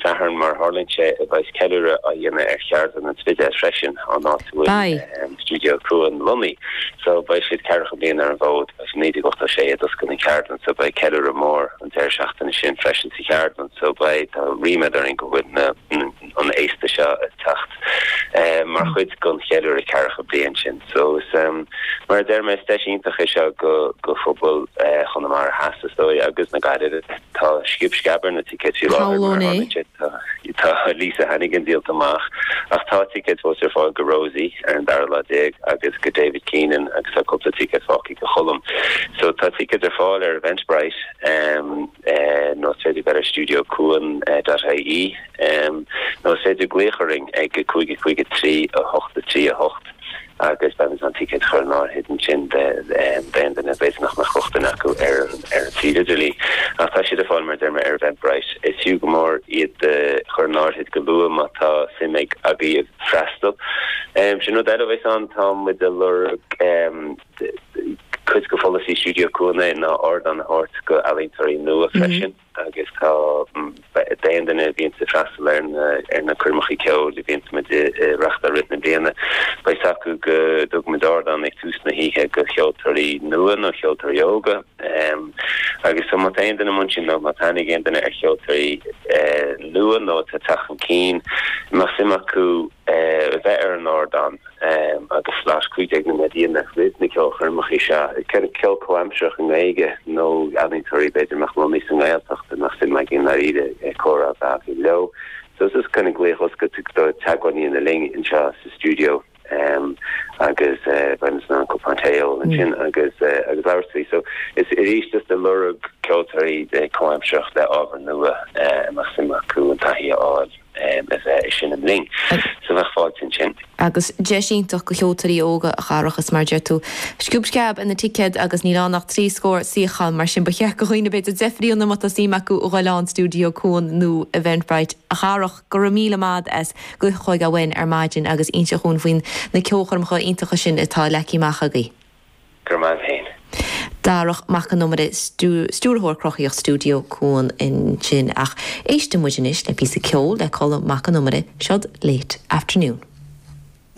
Satharn mar a tharlaíonn sé, beidh ceiliúradh á dhéanamh ar cheardlann an Spidéil freisin, an áit a bhfuil stiúideo Cuan lonnaithe. So beidh siad ceathracha bliain ar an bhfód, as 1986 a d'oscail an cheardlann so beidh ceiliúradh mór an deireadh seachtaine sin freisin sa cheardlann so beidh, tá ríméad orainn go bhfuil na, an fhéasta seo ag teacht mar chuid den cheiliúradh ceathracha bliain sin. So is mar a deir mé, is deis iontach é seo go, go phobal Chonamara Theas is dóigh agus na Gaillimhe. Tá sciob sceab ar na ticéid faoi láthair tá Lisa Hannigan díolta amach ach tá ticéid fós ar fáil go Rosie ar an dara lá déag agus go David Keenan agus tá cúpla ticéad fágtha go Cholm. So tá ticéid ar fáil ar Eventbrite nó is féidir bheith ar stiuideocuan.ie nó is féidir glaoch orainn ag 553 8 3 8. Agus beidh muid in ann ticéad a chur in áirithe ansin d'aon duine b'fhéidir nach mbeadh rochtain acu ar an suíomh idirlín. Ach tá siad ar fáil, mar a deir mé, ar Eventbrite. Is fiú go mór iad a chur in áirithe go luath má tá suim agaibh freastal. Sin rud eile a bheas ann. Tá muid a lorg cuid go pholasaí Stiúideo Cuan ná ardán a thabhairt go ealaíontóirí nua freisin. Agus tá d'aon duine a bhíonns ag freastal ar na coirmeacha ceoil a bhíonns muid a reachtáil i rith na bliana, beidh a fhios acu go dtugann muid ardán ag tús na hoíche do cheoltóirí nua nó ceoltóirí óga. Agus so má tá aon duine amuigh ansin nó má tá aithne ag aon duine ar cheoltóirí nua nó atá ag teacht chun cinn, a mbeadh suim acu a bheith ar an ardán? agus slot cúig déag nóiméad a dhéanamh roimh na ceolchoirmeacha seo, is cineál ceol comhaimsearach i nGaeilge nó ealaíontóirí b'fhéidir ina gcónaí sa nGaeltacht a mbeadh suim againn i ndáiríre comhrá a bheith againn leo. So is is cineál glaoch oscailte é teagmháil a dhéanamh linn anseo sa stiúideo agus beidh muid in ann cupán tae a ól ansin agus labhairt faoi. So is arís is ag lorg ceoltóirí comhaimsearach le ábhar nua a mbeadh suim acu an taithí a fháil. a bheith ag seinm linn. So bheadh fáilte ansin. Agus deis iontach go cheoltóirí óga a Dharach, is mar a deir tú. Sciob sceab ar na ticéid agus níl ann ach trí scór suíochán, mar sin ba cheart go dhaoine b'fhéidir deifriú nó má tá suim acu a ghoil ann Stiúideo Cuan nó Eventbrite. A Dharach, go raibh míle maith agat as do chuid ama ar maidin agus inseacht dúinn faoi na ceolchoirmeacha iontacha sin atá leagtha amach agaibh. Go raibh maith agat féin. Darach Mac Con Iomaire, Stiúrthóir Cruthaitheach Stiúideo Cuan ansin. Ach éistfidh muid anois le píosa ceoil le Colm Mac Con Iomaire, Seod Late Afternoon.